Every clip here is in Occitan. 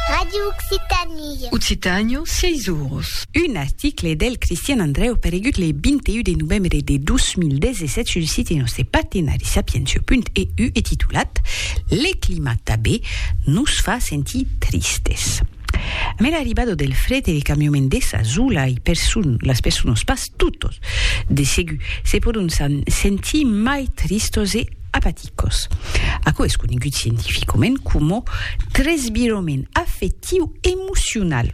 Radio Occitanie. Occitània, 6 oros. Un article del Cristian Andrèu paregut le 21 de novembre de 2017 sul site nòste patenarisapiencio.eu e titulat Le climat tabé nos fa sentir tristes. Amé l'arribada del fred e le cambiament dessa zula i persun las personas pas totos de segur se pòdon sentir mai tristos e apaticos. Aquò es conegut scientificament coma tresvirament afectiu emocional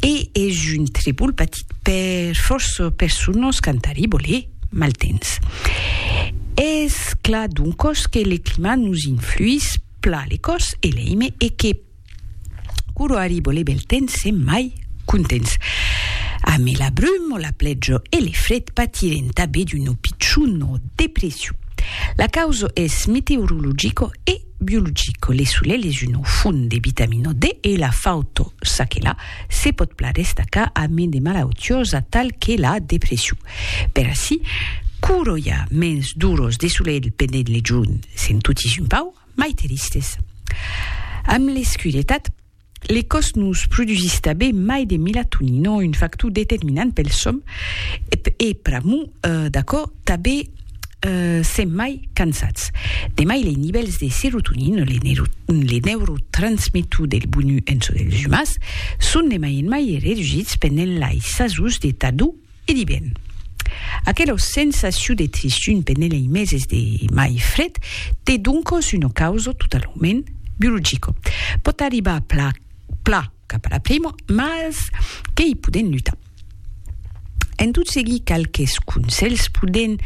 e es un tribol patit per fòrça personas qu'an tarribo le maltemps. Es clar doncos que le climat nos influís pla le còs e l'eime e que, Curo arribo le bel temps sem mai contents. Amé la brum o la pletjo e le fred patirem tabé d'uno pichuno depressiu. La causo es meteorologico e biologico, le solel es uno font de vitamino D e la fauto çaquelà se pot plan destacar amé de malautiosa tal que la depressiu. Per ací, curo i a mens d'uros de solel pendent le jorn sem totis un pau, Mai teristes. Amb l'escuretat, le còs nos produsís tabé mai de milatonino, un factor determinant pel sòm, e pr'amor d'aquò tabé sèm mai cansats. De mai les nivèls de serotonino, le neurotransmetor del bonur en çò dels umans, son de mai en mai redusits pendent lais sasons de tardor E di ben, aquela sensacion de trissun pendent lei meses de mai fred te doncos una causa totalament biologica. Pòt arribar pla, pla cap a la prima, mas que i podem lutar. En tot seguir qualques conselhs podem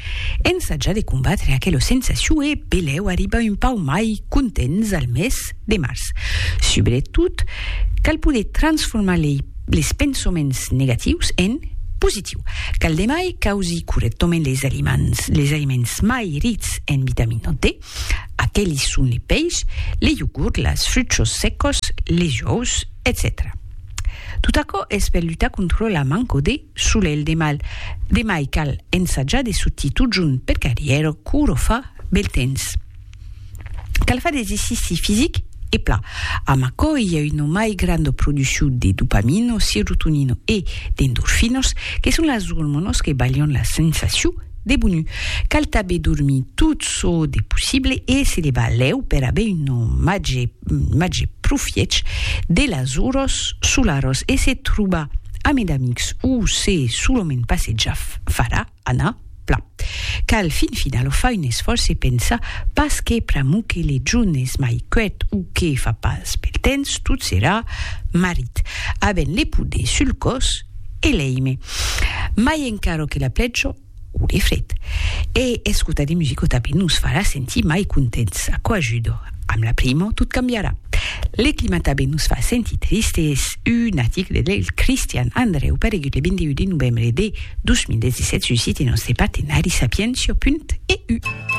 ensajar de combatre aquela sensacion e belèu arribar un pauc mai contents al mes. de març. Subretot, cal poder transformar lei les pensoments negatius en positiu. Cal de mai causir correctament les aliments, les aliments mai rics en vitamina D. Aquelis son le peish, le iogurt, las fruchos secos, les ous, etcetèra. Tot aquò es per lutar contra la manco de solelh de mal. De mai cal ensajar de sortir totjorn per carrièra cour o fa bel temps. Cal far d'exercici fisic e plan, amb aquò i a una mai granda produccion de dopamina, serotonina e d'endorfinas, que son las ormonas que balhan la sensacion de bonu. Cal tanben dormir tot çò de possible e se levar lèu per aver un màger, un màger profiech de las oras solaras e se trobar amid amics o se solament passejar farà anar plan. Cal fin final o fai un esfòrç e pensar pas que pr'amor que le jorn es mai quèt o que fa pas bèl temps tot serà marit. Avèm le poder sul còs e l'èime mai encara que la plèja o le fred. E escotar de musica tanben nos farà sentir mai contents. Aquò ajuda. Amb la primo tot cambiarà. Le clima tanben nos fa sentir tristes. Un article del Christian Andreu paregut le 21 de novembre de 2017 suscite nòstre partenari Sapientia.eu.